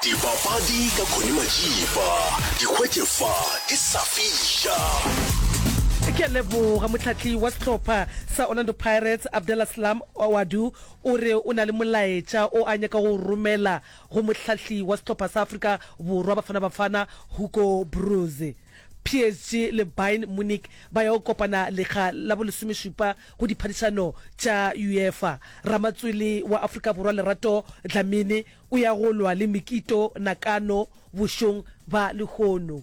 Dipapadi ka Connie Majiba, di hwetše fa di sa fiša. Ke a leboga motlhatli wa sehlopha sa Orlando Pirates Abdella Slam Ouaddou o re o na le molaetša o a nyaka go o romela go mohlahli wa sehlopha sa Afrika Borwa Bafana Bafana Hugo Broos. PSG le Bayern Munich ba ya go kopana lekga la bolesomešupa Go diphadišano tša UEFA, ramatswele wa Afrika Borwa Lerato Dlamini o ya go lwa le Mikito Nakano bošong ba lehono.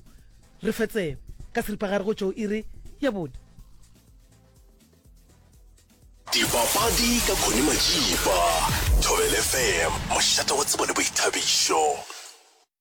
Re fetse ka seripagare go tšwa go iri ya bone. Dipapadi ka Connie Majiba, Thobel FM, mošate wa tsebo le boithabišo.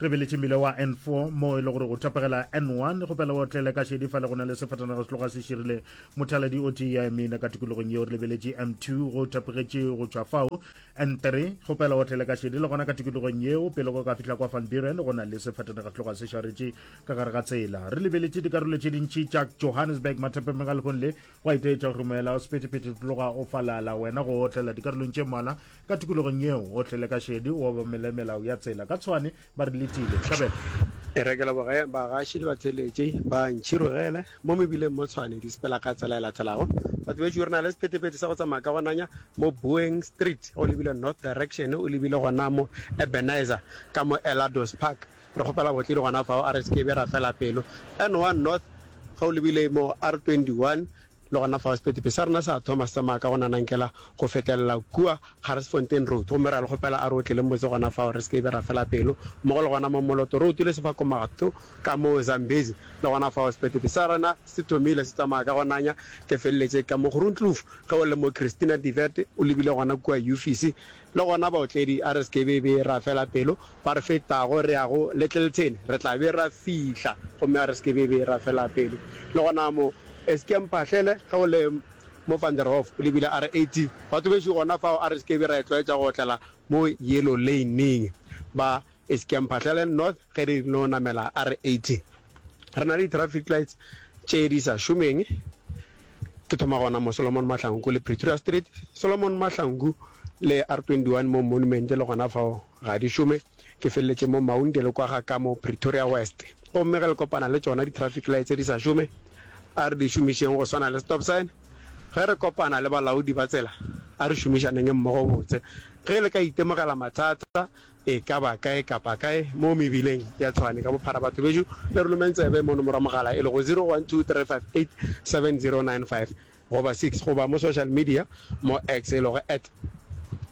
Re beletše mmila wa N4 mo e le gore o tapegela N1 go pela o tlele ka šedi fa le go na le sefatanaga se tloga se širile mothaladi o tee ya emina ka tikologong yeo re lebeletše M2 go tapegetše go tšwa fao N3 go pela o tlele ka šedi le gona ka tikologong yeo pele go ka fihla kwa Van Buren go na le sefatanaga se tloga se šaretše ka gare ga tsela re lebeletše dikarolo tše dintši tša Johannesburg mathapemeng a lehong le Gwa itaetša go rumela o sephethephethe tloga o falala wena go otlela dikarolong tše mmalwa ka tikologong yeo o tlele ka šedi o obamele melao ya tsela ka tshwane ba re letile tšhabela E rekela bogae bagaši le batheeletši ba ntšhirogele mo mebileng mo tshwane di sepela ka tsela e latelago batho bešo re na le sephethephethe sa go tsamaya ka go nanya mo boeing street o lebile north direction o lebile gonamo ebenezer ka mo elados park Re kgopela botledi gona fao, a re se ke be ra fela pelo. N one North, ge o lebile mo R twenty-one, le gona fao sepetepe sa rena sa thoma se tsamaya ka go nanankela go fetelela kua Garsfontein Road, gomme re a le kgopela a re otlele motse gona fao, re se ke be ra fela pelo, mmogo le gona mo Moloto Road le Sefakomato ka mo Zambezi, le gona fao sepetepe sa rena se thomile se tsamaya ka go nanya, ke feleletše ka mo Groenkloof, ge o le mo Christina Divert o lebile gona kua Yufisi, Le gona baotledi, a re se ke be be ra fela pelo, fa re fetago re ya go Littleton, re tla be ra fihla, gomme a re se ke be be ra fela pelo. Le gona mo, se ke mphahlele, ge o le mo Van der Hof, o lebile RAT, ba tlogetše gona fao, a re se ke be ra itlwaetša go otlela mo Yellow Lane-ing, ba E se ke ya Mphahlelen North ge re no namela R80. Re na le di-traffic lights tše di sa šomeng. Ke thoma gona mo Solomon Mahlangu le Pretoria Street. Solomon Mahlangu le R21 mo Monument le gona fao ga di šome. Ke feleletše mo Maunde le kwa ga ka mo Pretoria West. Gomme ge le kopana le tšona di-traffic lights tše di sa šome, a re di šomišeng go swana le stop sign. Ge re kopana le balaodi ba tsela, a re šomišaneng mmogo botse. Ge le ka itemogela mathata, E ka ba kae kapa kae mo mebileng ya Tshwane ka bophara batho bešo le re lomeng tsebe mo nomoro ya mogala e lego 0123587095 goba 6 goba mo social media mo X e lego at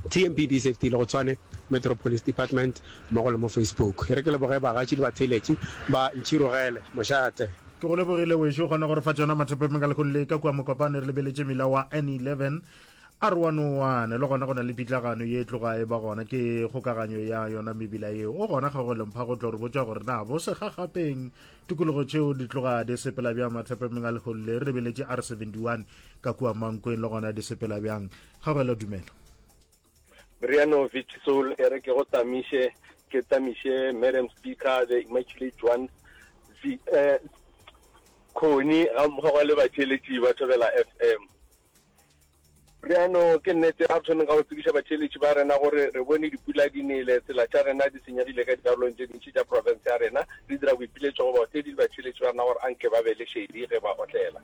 TMPDSafety le go Tshwane Metro Police Department mmogo le mo Facebook. E re ke leboge bagatši le batheeletši ba Ntšhirogele Mošate. Ke go lebogile wešo, kgona gore fa tšona mathapepeng ka lekgong le ka kua Mokopane re lebeletše mila wa N11. A re wa no wana le gona go na le pitlagano ye e tloga e ba gona ke kgokaganyo ya yona mebila yeo. O gona ga go lempha go tlo re botša gore na bo segagapeng tikologo tšeo di tloga di sepela bjang mathapemeng a legolo le re beletše a re 71 ka kua mankweng le gona di sepela bjang. Kgabela dumela. Riano Vich Soul e re ke go tamiše ke tamiše Madam Speaker the Immaculate Joan Zi, eh, Khoni ga mmogo le batšeletši ba Thobela FM. Bjano, ke nnete, ga re thomeng ka go tsebiša batheeletši ba rena gore re bone dipula di nele, tsela tša rena di senyegile ka dikarolong tše dintši tša profense ya rena, re dira boipiletšo go baotledi le batheeletši ba rena gore a nke ba be le šedi ge ba otlela.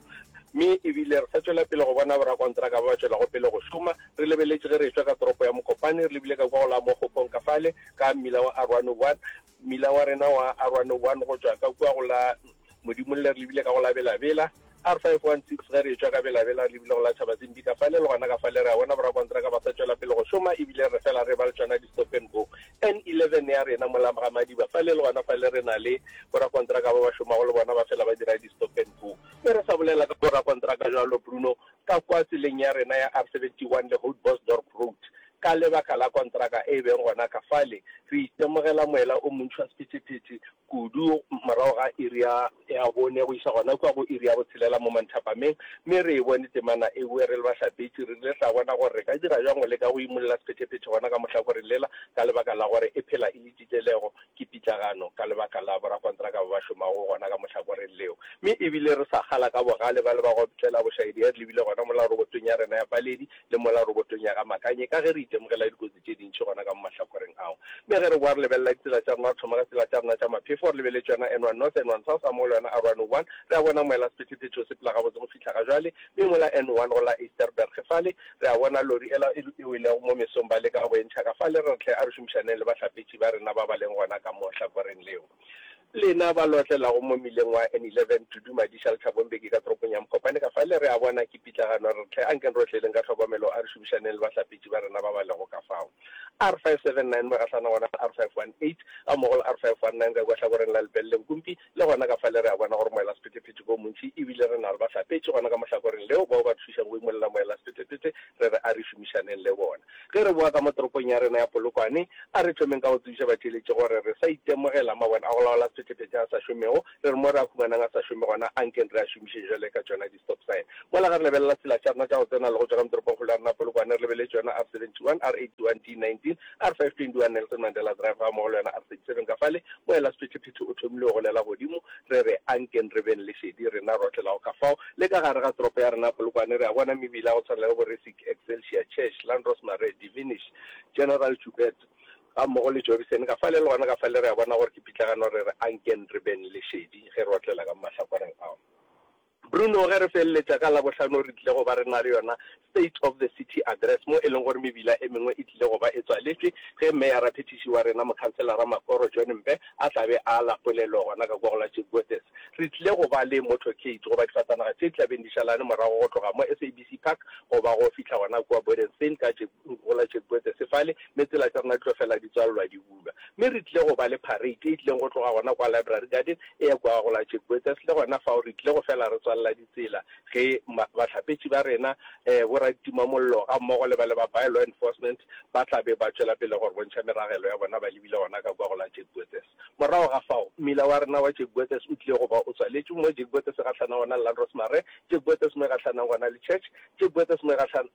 Mme e bile re sa tšwela pele go bona borakontraka ba ba tšwelago pele go šoma. Re lebeletše ge re e-tšwa ka toropo ya Mokopane, re lebile ka kua go la Mokgokong ka fale, ka mmila wa Aruanuguan, Mmila wa rena wa R101 go tšwa ka kua go la Modimolle re lebile ka go la Belabela, R516 ge re etšwa ka Belabela re lebile go la Tšhabazimbi ka fale le gona ka fale re a bona borakontraka ba sa tšwela pele go šoma ebile re fela re eba le tšona di-stop and go. N11 ya rena mola ga Madiba fale le gona fale re na le borakontraka ba ba šomago le bona ba fela ba dira di-stop and go. Ge re sa bolela ka borakontraka bjalo Bruno ka kua tseleng ya rena ya R71 le Houtbosdorp Road. Ka lebaka la kontraka e beng gona ka fale, re itemogela moela o montši wa sephethephethe kudu morago ga iri ya ya bone go iša gona kua go iri ya botshelela mo manthapameng, mme re e bone temana e boe. Re le bahlapetši, re rile ra bona gore re ka dira bjang go leka go imolla sephethephethe gona ka mohlakoreng lela ka lebaka la gore e phela e le titelego. Ke pitlagano ka lebaka la borakontraka ba ba šomago gona ka mohlakoreng leo, mme e bile re sa kgala ka bogale ba le ba go tlela bošaedi ge re lebile gona mola robotong ya rena ya paledi le mola robotong ya ga Makanye ka ge re itemogela dikotsi tše dintši gona ka mo mahlakoreng ao. Mme ge re boa re lebelela ditsela tša rena, re thoma ka tsela tša rena tša maphefo, re lebeletse yona N1 North, N1 South, a mo le yona R101, re a bona moela-sephetephete o sepela gabotse go fihla fihla ga jwale, mme mola N one go la Eysterberg fale, re a bona lori ela e e welego mo mesong ba leka go e ntšha ka fale. Re re hle a re šomišaneng le bahlapetši ba rena ba ba leng gona ka mo hlakoreng leo lena ba lo otlelago mo mmileng wa N eleven, Tudu, Madiša, Lethabong, Beke ka toropong ya Mokopane. Ka fale re a bona ke pitlagano. Re re hle ankeng re otleleng ka tlhokomelo a re šomišaneng le bahlapetši ba rena ba ba lego ka fao. R five seven nine mo e gahlanago gona le R five one eight gammogo le R five one nine ka kua hlakoreng la Lepelle Nkumpi, Le gona ka fale re a bona gore moela-sephethephethe ke o montši e bile re na le bahlapetši gona ka mohlakoreng leo bao ba re thušago go imolla moela-sephethephethe re re a re šomišaneng le bona. Ge re boa ka mo toropong ya rena ya Polokwane, a re thomeng ka go tsebiša batheeletši gore re sa itemogela mabone a go laola sephethephethe a sa šomego, re re mo re a humanang a sa šome gona a nkeng re a šomiše bjale ka tšona Stokvel. Mola ge re lebelela tsela tša rena tša go tsena le go tšwa ka mo toropongkgolo ya rena Polokwane, re lebeletse yona R71, R81, D19, R521 Nelson Mandela Drive gammogo le yona R37 ka fale, moelasephetephete o thomile go golela godimo, re re, Ankeng re beng le šedi rena rohle la go ka fao. Le ka gare ga toropo ya rena Polokwane, re a bona mebila ya go tshwana le bo Resic, Excelsior, Chesh, Landros Marais, Divinish, General Joubert gammogo le Jobison ka fale. Le gona ka fale re a bona gore ke pitlagano, re re, Ankeng re beng le šedi ge re otlela ka mo mahlakoreng ao. Bruno, Ge re feleletša ka Labohlano re tlile go ba re na le yona State of the City Address mo e leng gore mebila e mengwe e tlile go ba e tswaletšwe ge Meyara-Phethiši wa rena Mokhanselara Makoro John Mbe a tla be a ala polelo gona ka kwa go la Chipgothes. Re tlile go ba le motorcade goba difatanaga tše di tla beng di šalane morago go tloga mo SABC Park go ba go fihla gona kua Bodenstein ka go la Chipgothes fale mme tsela tša rena di tlo fela di tswalelwa di bula. Bula, mme re tlile go ba le parade e tlileng go tloga gona kwa Library Garden e ya kwa go la Jack Botha's. Le gona fao re tlile go fela re tswalela ditsela ge bahlapetši ba rena, um boraditimamollo ga mmogo le ba le ba By-Law Enforcement ba tla be ba tšwela pele go re bontšha meragelo ya bona ba lebile gona ka kwa go la Jack Botha's. Morago ga fao, mmila wa rena wa Jack Botha's o tlile go ba o tswaletšwe mo Jack Botha's e gahlana gona le la Rosemary, Jack Botha's mo e gahlana gona le Church, Jack Botha's mo e gahlana